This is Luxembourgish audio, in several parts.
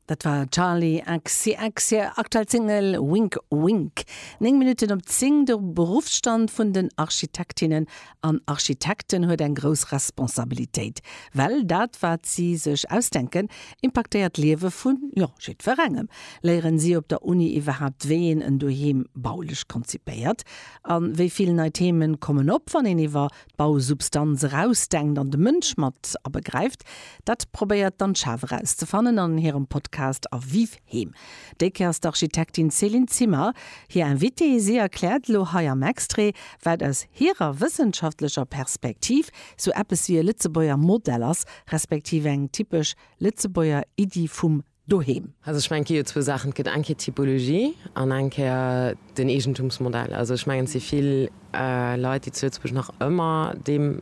Dat war Charli XCX hir aktuell Single Wink Wink. Néng Minutten op zéng. De Beruffsstand vun den Architektinnen an Architekten huet eng grouss Responsabilitéit, well dat wat si sech ausdenken impaktéiert d'Liewe vu jo jiddwerengem. Léieren si op der Uni iwwerhaapt wéi een en Doheem baulech konzipéiert? An wéi vill nei Themen kommen op wann een iwwer d'Bausubstanz erausdenkt an de Mënsch mat abegräift, dat probéiert d'Anschaaf erauszefannen an hirem Podcast A Vive Heem. Déi Kéier ass d'Architektin Céline Zimmer hir Invitée. Si erkläert elo hei am Extrait, wat aus hirer wëssenschaftlecher Perspektiv sou eppes wéi e Lëtzebuerger Modell ass, respektiv eng typesch Lëtzebuerger Iddi vum doheem. Also ech mengen, et gi jo zwou Saachen, et gëtt eng Kéier d'Typologie an eng Kéier den Eegentumsmodell. Also ech mengen, et si vill Leit, déi zu Lëtzebuerg nach ëmmer deem,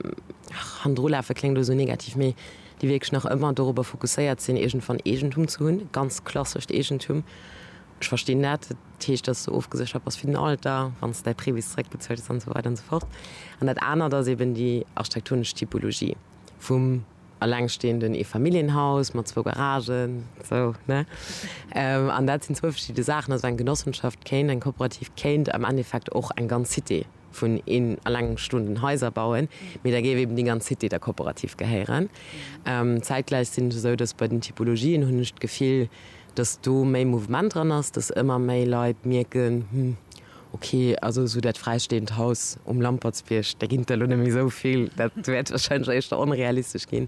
ach, hannendrulafe kléngt elo esou negativ, mee déi wierklech nach ëmmer dorobber fokusséiert sinn, iergendwann Eegentum ze hunn, ganz klassescht Eegentum. Ech verstinn dat. Dat heescht, dass du ofgeséchert bass fir den Alter, wann s de däi Prêt bis zeréckbezuelt hues an esou weider an esou fort. An dat anert ass eeben déi architektonesch Typologie vum, Elengstehenden, Eefamilljenhaus mat zwou Garagen, sou, ne? An dat sinn zwou verschidde Saachen. Also eng Genossenschaft kéint, eng Kooperativ kéint am Endeffekt och eng ganz Cité vun elengstoenden Haiser bauen, mee da géif eben déi ganz Cité der Kooperativ gehéieren. Zäitgläich sinn et esou, dass bei den Typologien, hunn ech d'Gefill, dass do méi Mouvement dran ass, dass ëmmer méi Leit mierken, Hm. Ok, also esou dat fräisteeënd Haus um Lampertsbierg, där ginn der elo net méi esou vill, dat wäert wahrscheinlech éischter onrealistesch ginn,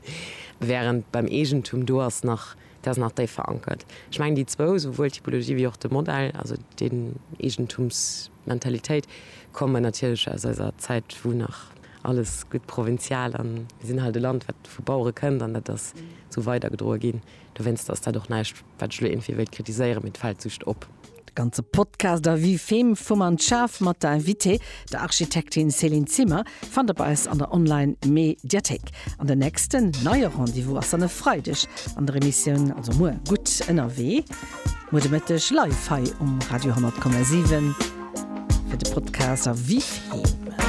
während beim Eegentum, do ass nach, dat ass nach déif verankert. Ech mengen déi zwou, souwuel d'Typologie wéi och de Modell, also den Eegentumsmentalitéit, kommen natierlech aus eiser Zäit, wou nach alles gutt provinzial, a mir sinn halt e Land, wat vu Bauere kënnt, an dat ass esou weidergedroe ginn. Dowéinst ass dat och näischt, wat ech elo iergendwéi wéilt kritiséieren, mee et fält just op. De ganze Podcast a Vue Fem vum an d'Schaf mat der Invitée, der Architektin Céline Zimmer, fannt der bei eis an der Online-Me-diathéik. An den nächsten neie Rendez-vous ass dann e Freideg an der Emissioun, also muer, Gutt ënnerwee, muer de Mëtteg live hei um Radio 10,7 fir de Podcast a Vue Fem.